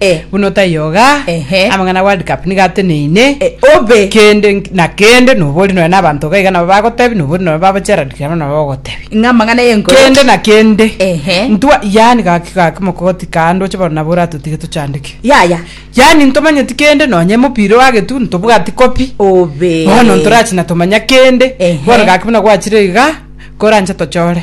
Eh. Buna otaiyo iga, Ehe. amang'ana ya World Cup nigo ateneine. Eh, obe. Kende nk- na kende nobori nonya na abanto iga iga nabo bagotebia, nobori nonya baba Gerald Kiama nabo bagogotebi. Ng'a amang'ana y'enkoro. Kende na kende. Ehe. Ntwa yaani gaki gaki mogogoti kaa ndoche bono nabo oratotige tochandeke. Yaya. Yaani ntomanyeti kende nonya emopira oagetu ntobwati copy. Obe. Bono ntorachi na tomanya kende. Ehe. Bono gaki buna gwachire iga, koranche tochore.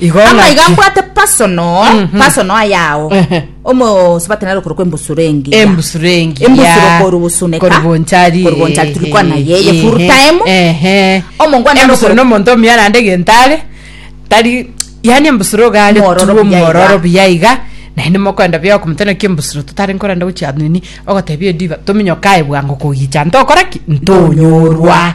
Igo Amaiga ng'aki- mbwate personal Mhm. personal ayao Ehe. omosubati nare okorokwa embusuro engiya embusuro engiya Embusuro koru gusuneka. Koru gonchari Koru gonchari turi kwana yeye full Ehe. time. ehe Omongwana embusuro arokoro- nomonto omuya naende gentare tari yani embusuro gare Mwororo tuo buya mwororo iga. buya iga naende mokwenda bia okomotana ki embusuro totari nkorenda gochia nini ogotebia ediba tominyokae bwango kogicha ntokora ki ntonyorwa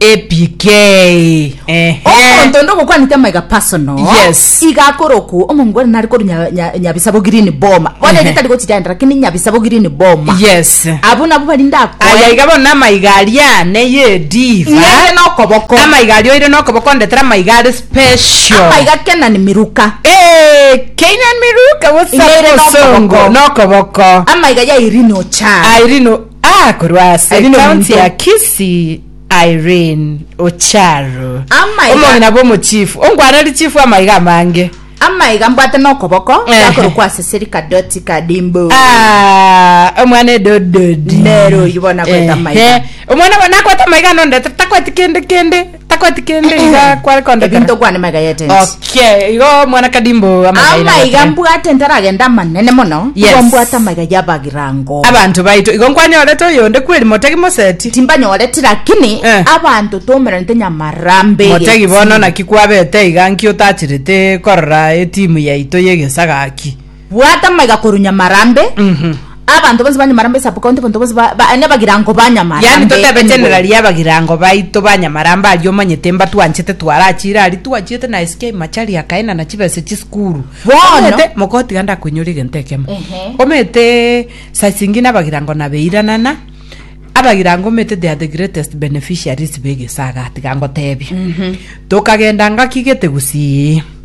APK. Ehe. omonto onde ogokwanete amaiga personal Yes. iga akorokwo omongo ore nare koru nya- nya- nyabisabo green boma bono Ehe. egetari gochitenda lakini nyabisabo green boma Yes. abo nabo bari ndakoe Aya iga bono amaiga aria neye diva. ng'ende nokoboko Amaiga aria oire nokoboko ndetera amaiga are special. amaiga kenani miruka Eh, Kenyan Miruka, what's up, Ng'ere Osongo? nokoboko. Nokoboko. amaiga ya irino cha Irene Ah, korwa ase Aye nomonto. county ya Kisii Irene Ocharo Amaiga. omong'ina bw'omochifu onkwaneri chifu amaiga amange amaiga mbwate nokoboko Ehe. gakorokwa ase serika doti kadimbu Ah, omwana edododi Nero oyu bona kweta amaiga. omwana wa- nakwete amaiga nondete takweti kende kende takwati kende iga kware kondekera ebinto kwane maiga yetenti okay igo mwana kadimbo amaiga ira amaiga gotire. mbwate ntaragenda amanene mono Yes. igo mbwate amaiga yabagirango abanto baito igo nkwanyorete oyonde kweri motegi moseti timbanyoreti lakini Eh. abanto tomerente nyamarambe motegi bono naki kwabete iga nki otachirete korora etimu yaito yegesaga ki Bwata amaiga korwa Nyamarambe, abanto bonsi ba Nyamarambe Sub-county, abanto bonsi ba, ba, nebagirango ba Nyamarambe. Yaani totebe anyway. generali abagirango baito ba Nyamarambe aria omanyete mbatwanchete twarachire aria twachiete na SK Machari akaenana chibese chisukuru. Bono. Omanyete, mogotiga ndakoinyore egento ekemo. Ehe. Omanyete saa chingi nabagirango nabeiranana, abagirango omanyete they are the greatest beneficiaries b'egesaga tiga ngotebie. Tokagenda ngaki gete gusii.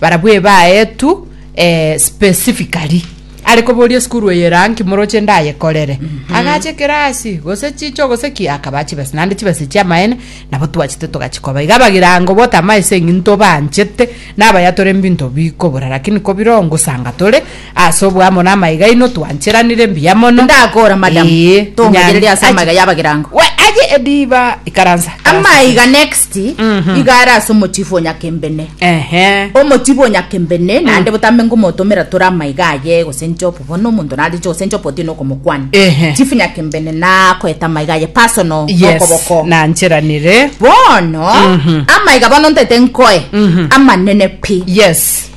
Barabwo ebaetwe eh, specifically are koboria esukuru eye eraa nki moroche ndayekorere agacha ekirasi gose chicho gose ki akaba chibesa naende chibesa chiamaene nabo twachete togachikoba iga abagirango obotama ase eng'into banchete nabayatore mbinto bikobora lakini kobiroo ngosanga tore Ase oboamo namaiga aino twancheranire mbuya mono. Ndakora madam. Ee. Tongachereri ase amaiga yabagirango. We aye ediba ikaransa. Amaiga next Mhm. iga are ase omochifu o Nyakembene. Ehe. Omochifu o Nyakembene naende botambe nkomotomera tore amaiga aye gosencha obo bono omonto nareche gosencha obo otiene okomokwana. Ehe. Chief Nyakembene nakoeta amaiga aye personal Yes. nokoboko. Nancheranire. Bono Mhm. amaiga bono ntaete nkoe Mhm. amanene pi. Yes.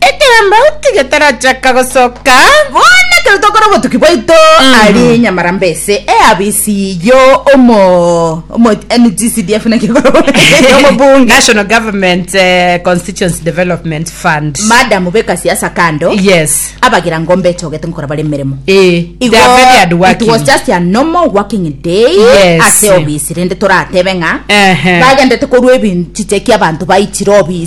Ekiagera otige tarachaka gosoka. Bono ekero tokora obotuki bwaito ari nyamara mbese eabisi yo omo omo NGCDF naki ekora omobunge National Government eh, Constituency Development Fund. madam beka siasa kando Yes. abagira ngombe echogete ngokora bare emeremo Eh, Igo, they are very hardworking. it was just a normal working day Yes. ase obisi rende toratebe ng'a Ehe. bagendete korwa ebinchiche kia abanto baichire obisi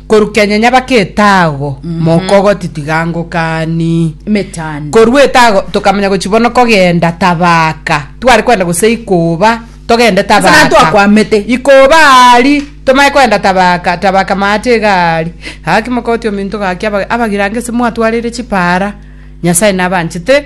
Korwa kenya nyabake etago mokogoti tiga ngokani Emetanda. korwa etago tokamanya gochi bono kogenda tabaka tware kwenda gose ikoba togende Ase tabaka natwakwamete. ikoba ari tomanye kwenda tabaka tabaka maate iga ari gaki mokogoti ominto gaki aba- abagirange ase mwatwarire chipara nyasae nabanchete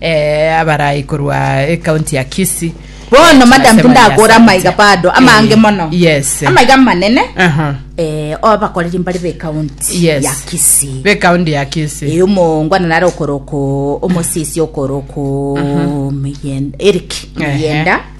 eh, abarai korwa ekaunti ya Kisii Bono madam tindakora amaiga bado amange mono yes amaiga manene aha eh obakoreri mbari be county yes ya Kisii be county ya Kisii e eh, omongo na naro koroko omosisi okoroko miyen Eric miyenda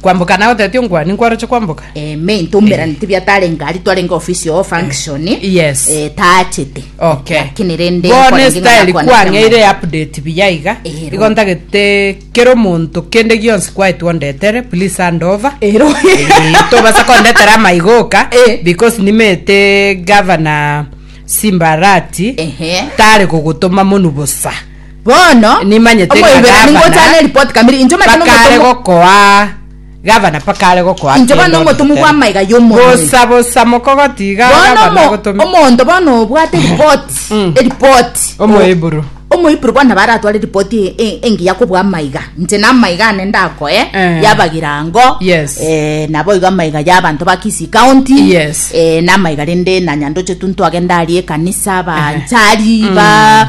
Kwamboka nagotebeti onkwane nkwaroche kwamboka. eh, main toumeranete bia tarenge ari twarenge ofisi oo function Yes. eh, taachete Okay. lakini rende Bono kwarenge ng'a esitayeli nakwane kwang'eire kiamana. update buya iga. Ero. Igo ntagete kera omonto kende gionsi kwaetwa ondetere, please hand over. ero Eh, tobasa kondetera amaigoka Eh. because nimete gavana simbarati Ehe. tare kogotoma monu bosa Bono, Nimanyete ng'a omoiberani gavana ngochane eripoti kamiri, inche omanyete bakaare nomotomwa gokoa gavana bakaare gokoa Inche bono kende onde nomotomwa goteba, bw'amaiga y'omonene. Bosa bosa mokogotiga Bono gavana omo- agotomete. omonto bono obwate eripoti Mm. eripoti Omoheburu. omoiburu bono nabo aratware eripoti e- e- engiya kobua amaiga inche na amaiga ane ndakoe Eh. yabagirango Yes. eh, nabo igo amaiga ya abanto ba Kisii county Yes. eh, na amaiga rende na nyandoche tu ntwagenda aria ekanisa banchari ba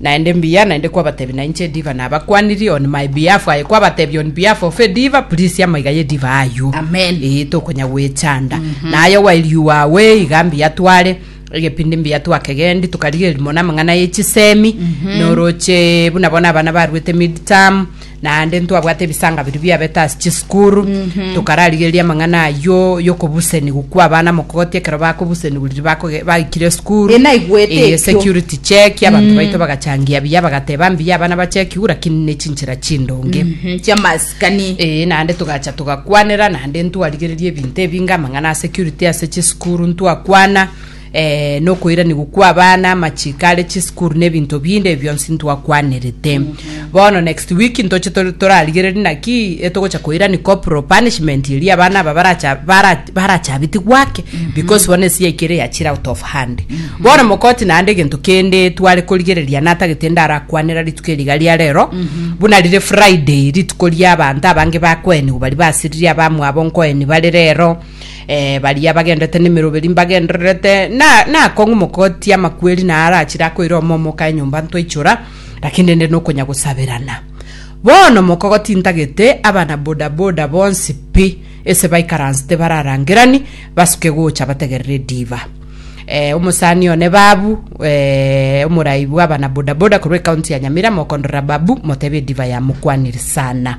Naende mbuya, naende kwabatebi na inche ediva nabakwanirie on my behalf, aye kwabatebi on behalf of ediva, please amaiga y'ediva aywo, Amen. ee, tokonya gwechanda. Na aye while you are away, iga mbuya tware, egepindi mbuya twakegendi, tokarigereria mono amang'ana ye chisemi, na oroche buna bono abana baruete mid-term, Naende ntwabwate ebisaanga biria biabete ase chisukuru, tokararigereria amang'ana ayio y'okobusenigwa kw'abana mokogoti ekero bakobusenigwa riria bakoge baikire esukuru. Ee, naigwete Ee, ekio. security check, abanto baito bagachangia buya, bagateba mbuya abana bachekiwe, lakini ne chinchera chindonge. Mhm, chiamasikani. Ee, naende togacha togakwanera, naende ntwarigereria ebinto ebinge, amang'ana a security ase chisukuru ntwakwana, nokoiranigwa kw'abana, amachiiko are chisukuru, na ebinto binde ebi bionsi ntwakwanerete. Bono next week ntoche tore- torarigererie naki etogocha koirani corporal punishment eria abana aba baracha bara- barachabiti gwake because bono ense yaito ere yachire out of hand bono mokoti naende egento kende tware korigereria natagete ndarakwanera rituko eri iga ria rero buna rire friday rituko ria abanto abange bakoenigwa bari basiririe abamwabo nkoeni bare rero Eh, baria bagendete nemeroberi mbagendererete na nakong'u mokotia amakweri na arachire akoira omomo oka enyomba ntwaichora lakini rende nokonya gosaberana bono mokogotintagete abana bodaboda bonsi pi ese baikaransete bararangerani basuke gocha bategerere diva eh, omosani one babu eh, omorai bwa abana bodaboda korwa ekaunti ya nyamira mokondorera babu motebe diva yamokwanire sana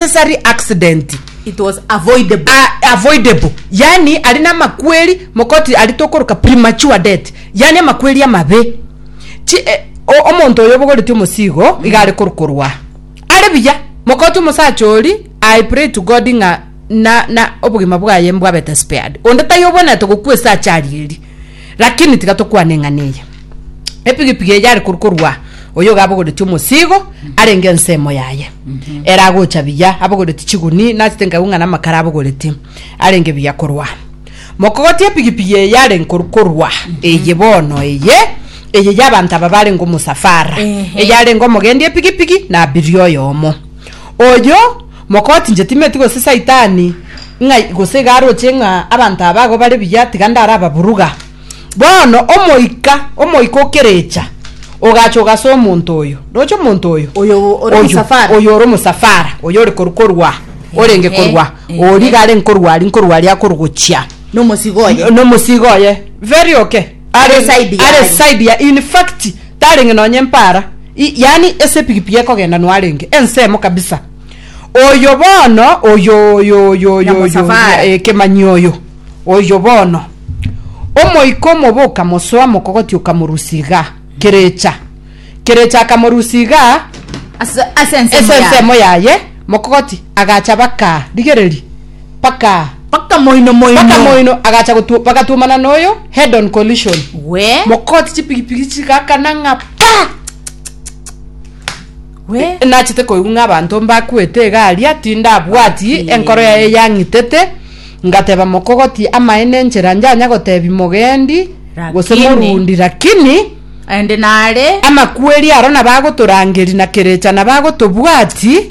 Necessary accident It was avoidable. a- avoidable yani ari namakweri mokoti ari tokoroka premature death yani amakweri amabe Chi, eh, o- omonto oyo obogoreti omosigo iga are korokorwa are buya mokoti omosacha ori i pray to god ng'a na, na obogima bwaye mbwabete spared onde tayobwenete gokwa esase ari eri Lakini tiga tokwane ng'a neye. Epigipigi eye are korwa korwa oyo iga abogoretie omosigo arenge ensemo yaye. Ere agocha buya abogoretie chiguni nachete nkaigwa ng'a namakara abogoretie arenge buya korwa. Mokogoti epigipigi eye arenge korwa korwa eye bono eye eye ya abanto aba barenge omosafara. Ehe. Eye arenge omogendi epigipigi na abiria oyomo. Oyo Mokotinche timeti gose saitani ng'a gose iga aroche ng'a abanto aba ago bare buya tiga ndarababuruga. Bono omoika, omoika o kerecha, ogacha ogasa omonto oyo. Roche omonto oyo. Oyo ore Oyio, omosafara. oyo ore omosafara, oyo ore korwa korwa, orenge Ehe, korwa, ehe. oria iga are nkorwa aria, nkorwa aria akorugochia Nomosigo oye. nomosigo oye very okay Are side are yaye. side ya in fact Tarenge nonya empara, i, yaani esepigipigi ekogenda noarenge ensemo kabisa. Oyo bono, oyo, oyo, oyo, oyo, oyo, Nyamosafari. eh, kemanyi oyo, oyo bono. Omoika omobe okamosoa mokogoti okamorusia igaa, kerecha, kerecha akamorusia igaa, Ase ase ensemo ase yaye. ensemo yaye mokogoti agacha bakaa, rigereria. mpaka Mpaka moino moino. mpaka moino agacha gotu- bagatuomana noyo head on collision We. mokoti chipigipigi chigakana ng'a pa We. nachete koigwa ng'a abanto mbakwete egari ati ndabwati Ati. enkoro yaye yang'itete ngateba mokogoti amaene enchera njanya gotebi mogendi gose Lakini. morundi lakini Aende nare. amakweri aro nabagotorangeri na kerecha nabagotobwati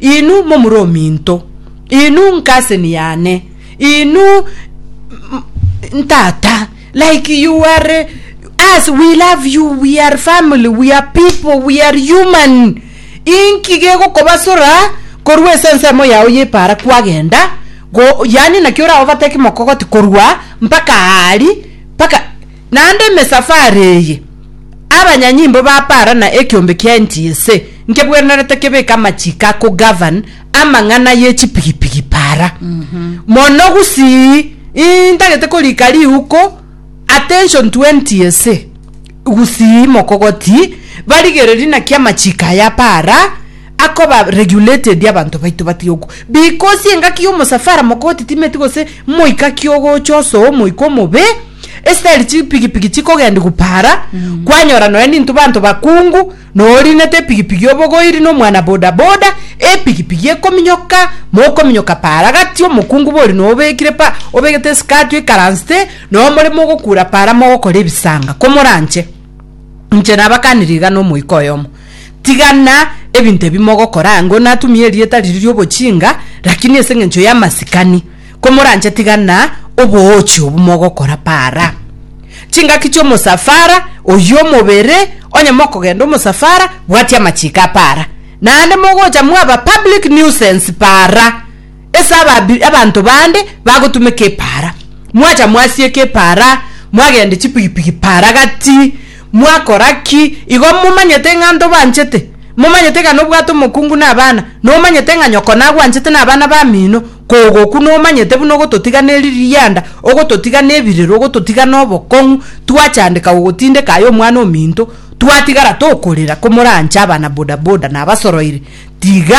Inwe momura ominto, inwe nkaseni yane, inwe ntata, like you are us, we love you, we are family, we are people, we are human. Inki gegokobasora korwa ase ensemo yao y'epaara kwagenda go, yaani naki oraobateki mokogoti korwa mpaka aari mpaka Naende emesafari eye, abanyanyimbo ba Para na ekeombe kiaye nchiyese nkebwenerete kebeke amachiiko a kogavan amang'ana ye chipigipigi Para. Mono gusii intagete korika riuko attention to NTSA gusii mokogoti barigereri naki amachiiko aya a Para akoba regulated abanto baito batige oku because engaki y'omosafara mokogoti timeti gose moika ki ogocha osoa omoika omobe Esitari chipigipigi chikogendia gupara kwanyora nonya ninto banto bakungu norinete epigipigi obogoiri nomwana boda boda epigipigi ekominyoka mokominyoka para gati omokungu bori nobekire pa obegete esikati oikaransete nonya more mogokura para mogokora ebisanga komoranche inche nabakanire iga nomoika oyomo tigana ebinto ebi mogokora ango natumia erieta riria riobochinga lakini ase eng'encho yamasikani. komoranche tiga na oboochi obo mogokora para. Chingaki chi'omosafara oyio omobere, onye mokogenda omosafara, bwatia amachiko a para. Naende mogocha mwaba public nuisance para, ase ababi abanto bande bagotumeka epara. Mwacha mwasieka epara, mwagenda chipigipigi para gati, mwakora ki, igo momanyete ng'a ntobanchete, momanyete ng'a nobwate omokungu na abana, nomanyete ng'a nyoko nagwanchete na abana bamino, Kogoku nomanyete buna ogototiga ne rianda, ogototiga ne birero, ogototiga na obokong'u, twachandeka gogotindeka aye omwana ominto, twatigara tokorera komorancha abana bodaboda na abasoroiri, tiga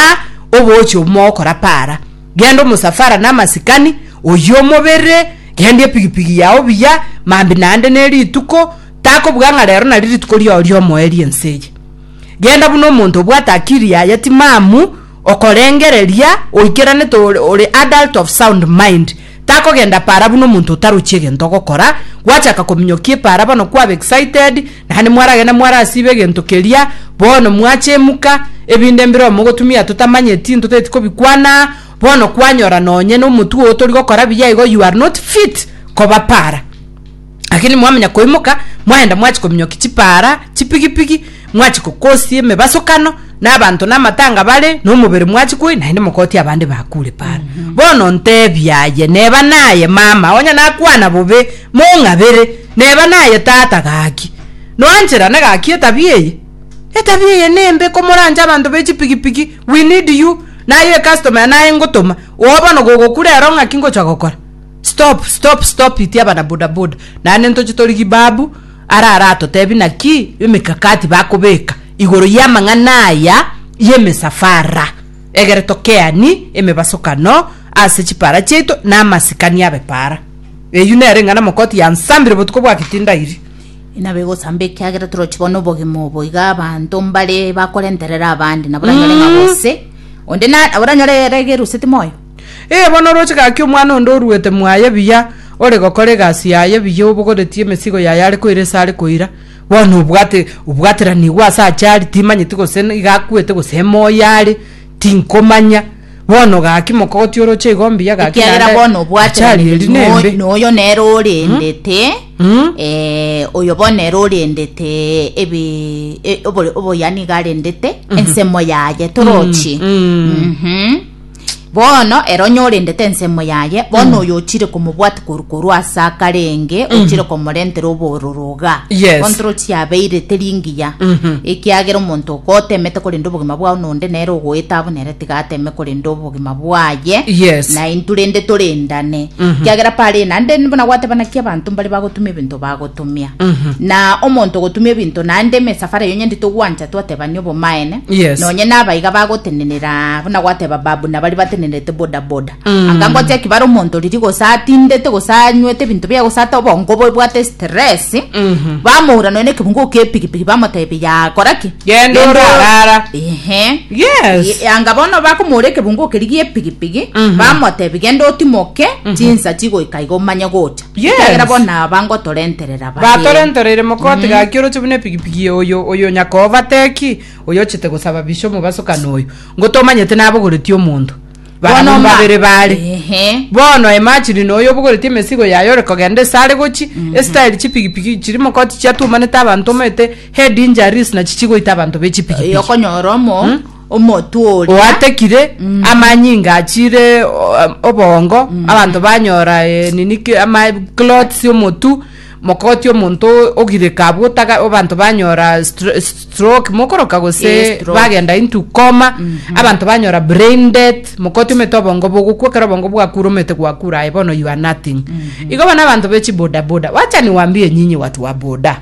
oboche omogokora para, genda omosafara na amasikani, oyie omobere, gendia epigipigi yao buya, mambi naende ne rituko, takobuga ng'a rero nari rituko riao riomoe riense eye. Genda buna omonto obwate akiri yaya timamu. Okorengereria oikeranete ore ore adult of sound mind takogenda para buna omonto otarochi egento ogokora, gwachaka kominyokia epara bono kwaba excited naende mwaragenda mwarasiba egento keria bono mwachemuka ebinde mbireo mogotumia totamanyeti ntoteti kobikwana bono kwanyora nonye nomotwe otorigokora buya igo you are not fit koba para. Lakini mwamanya koimoka, mwaenda mwachia kominyokia chipaara, chipigipigi, mwachia gokosia emebasokano, na abanto namatanga bare, na omobere mwachia koe, naende mogotia abande bakure paara. Bono nteebia aye, neba naye mama, onye nakwana bobe, mong'abere, neba naye tata gaki. Noancherane gaki etabia eye. Etabia eye nembe komoranche abanto be chipigipigi, we need you, naye ecustomer naye ngotoma, oo bono gogokura ero ng'aki ngochia gokora. Stop stop stop it abana boda boda naende ntoche tori gibabu ara aratotebi naki emekakati bakobeka igoro y'amang'ana aya y'emesafara egere tokeani emebasokano ase chipara chiaito na amasikani abe para eyio nere eng'ana mokoti yansambire botuko bwa kitindairi Inabo egosamba ekiagera torochi bono obogima obo iga abanto mbare bakorenterera abande nabo oranyore ng'a gose onde na nabo oranyore ere egeruseti moyo Ee, bono oroche gaki omwana onde oruete mwaye buya, ore gokora egasi yaye buya, obogoretie emesigo yaye are koira ase are koira, bono obwate obwateranigwe ase ache are, timanyeti gose n- iga akwete gose emoyo are, tinkomanya. Bono gaki mokogoti oroche igo mbuya gaki ekiagera naende bono ache aria eri obwateranire nembe. no- noyo nere orendete Mm. eh, oyo bono nere orendete ebi- e- obore- oboyani iga arendete ensemo yaye torochi Mm. Mhm. Bono ere onyorendete ensemo yaye, bono mm. oyo ochire komobwati koru koru ase akarenge mm. ochire komorentera obororoga yes. bono toro chiabeirete ringiya mm -hmm. ekiagera omonto okotemete korenda obogima bwao nonde nere ogoeta abo nere tigateme korenda obogima bwaye yes. na intu rende torendane mm -hmm. kiagera pare nande buna gwatebana ki abanto mbare bagotumia ebinto bagotumia mm -hmm. na omonto ogotumia ebinto nande mesafara yonye ndi togwancha twatebania obomaene Yes. nonye nabaiga bagotenenera buna gwateba babu na bari batenenerete boda boda Mm. anga ngotia ki bare omonto riri gose atindete gose anywete ebinto biaye gose ate obongo bwebwate stress Mhm. bamoura nonya na ekebungo kepigipigi bamotebia yakora ki Genda Genda ore orara. ehe Yes. E- anga bono bakomoura ekebungo keri giepigipigi Mhm. bamotebi genda otimoke chinsa chigoika iga omanye gocha Ekiagera Yes. bono aba ngotorenterera bare. batorentoreire mokoti gaki oroche buna epigipigi oyo oyo nyakoba teki oyo ochete gosaba bisha omobasokano oyo ngotomanyete nabogoreti omonto Bono barabwo ma- babere bare Ehe. bono emachini noyo obogoreti emesigo yaye ore kogenda esare gochi esitayeri chipigipigi chiri mokoti chiatumanete abanto omanyete head injuries nachi chigoita abanto bechipigipigi Yokonyora omo omotwe oria. Oatekire, amanyinga achiire obongo, abanto banyora nini ama clotts omotu mokoti omonto ogireka abwo otaka abanto banyora stroke mokoroka gose bagenda into coma abanto banyora brain death mokoti omete obongo bogokwa ekero obongo bwakure omete gwakure aye bono you are nothing igo bono abanto be chibodaboda wacha niwambie nyinyi watu wa boda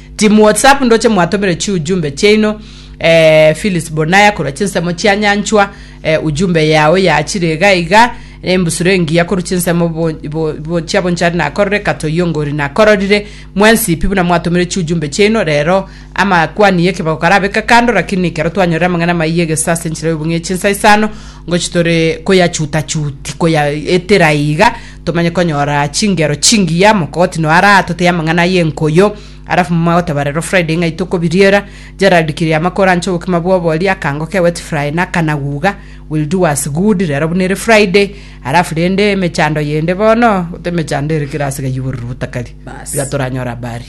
Timu WhatsApp ndoche mwatomere chiujumbe chiaino eh, Phyllis Bonaya korwa chinsemo chia Nyanchwa eh, ujumbe yao yaachire iga iga embusuro engiya korwa chinsemo bo- bo- bo- chia bonchari nakorore katoyongori nakororire mwensi pi buna mwatomere chiujumbe chiaino rero amakwani y'ekebago karabeka kando lakini ekero twanyorire amang'ana amaiya egesa ase enchera y'obong'e chinsa isano ngochi tore koyachuta chuti koyaetera iga Tomanye konyora chingero chingiya mokogoti no ara atoteye amang'ana y'enkoyo alafu momo agoteba rero Friday ng'ai tokobiriera Gerald Kiriama kore anche obokima bw'obori akango ke wet fry na kanaguga will do us good rero buna ere Friday alafu rende emechando yende bono gote emechando ere kera ase gayiborire botakari Bas. iga toranyore habari